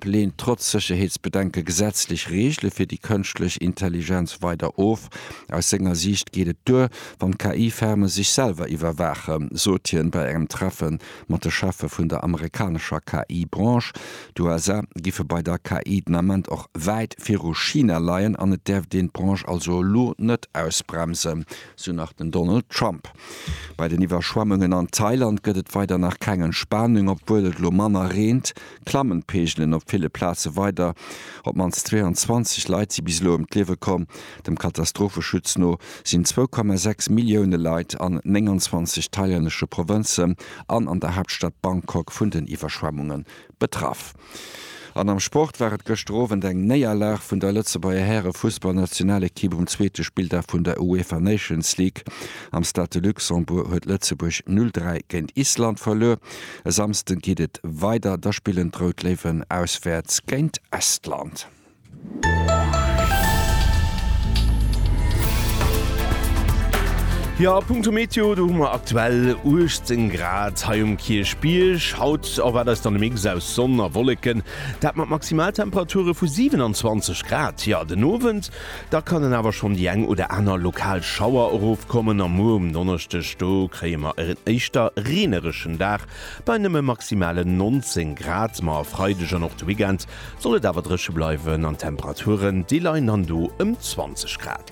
leent trotz Sécherheetsbedenke gesetzlech Reegele fir déi kënschtlech Intelligenz weider of. Aus senger Siicht geet et duer, wann d'KI-Ferme sech selwer iwwerwaachen, sot hien bei engem Treffe mat de Cheffe vun der amerikanescher KI-Branche. D'USA giffe bei der KI den Ament och wäit viru China leien an et däerft een d'Branche also elo net ausbremsen, sou nach den Donald Trump. Bei den Iwwerschwemmungen an Thailand gëtt et weider nach keng Entspanung, obwuel et elo manner reent. klammen d'Peegelen op ville Plaze weider. Op d'mannst 22 Leit si bis elo ëm d'Liewe komm. Dem Katastropheschutz no sinn 2,6 Millioune Leit an 29 thailännesche Provënzen an an der Haaptstad Bangkok vun den Iwwerschwemmunge betraff. An am Sport war et gëschter Owend eng Néierlag vun der Lëtzebuerger Häre-Fussballnationalekipp um zweete Spilldag vun der UEFA Nations League. Am Stade de Luxembourg huet Lëtzebuerg 0, 3 géint Island verluer. E Samsden geet et weider, da spillen d'Rout Léiwen auswäerts géint Estland. Jo, a punkto Meteo, do hu mer aktuell 18 Grad hei um Kierchbierg. Haut erwaart eis dann e Mix aus Sonn a Wolleken, dat mat Maximaltemperature vu 27 Grad. Jo, den Owend Da kannen awer schonn déi eng oder aner lokal Schauer erofkommen a muer um Donneschdeg, do kréie mer e éischter reenereschen Dag bei nëmme maximale 19 Grad. Ma e Freideg an och de Weekend soll et awer dréche bleiwen an d'Temperaturen, déi leien dann do ëm 20 Grad.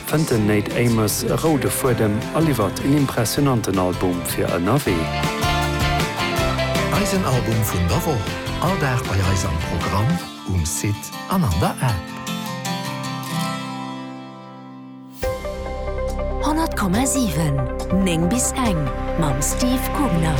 Fënnt den Nate Amos e roude Fuedem a liwwert en impressionanten Album fir ënnerwee. Eisen Album vun der Woch, all Dag bei eis am Programm, um Site an an der App. 100,7, 9 bis eng mam Steve Gubner.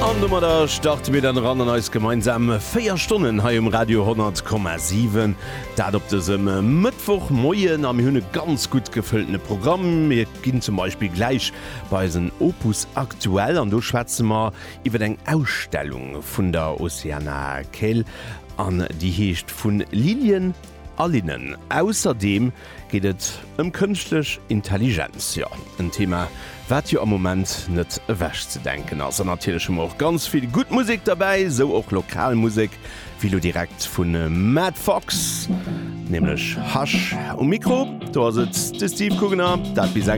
An domadder starte mir dann eran an eis gemeinsam 4 Stonnen hei um Radio 100,7. Dat op dësem Mëttwochmoien a mir hunn e ganz gutt gefëlltene Programm. Mir ginn zum Beispill gläich bei eisen Opus aktuell an do schwätze mer iwwer eng Ausstellung vun der Oceana Kell an déi heescht Vun Lilien a Linnen. Ausserdeem Geet et ëm kënschtlech Intelligenz? Jo, en Thema, wat jo am Moment net ewech ze denken ass. An natierlech hu mer och ganz vill gutt Musek derbäi, esou och lokal Musek, wéi elo direkt vu Matt Fox, nämlech Hush um Mikro. Do ass et de Steve Coogener, dat bis eng.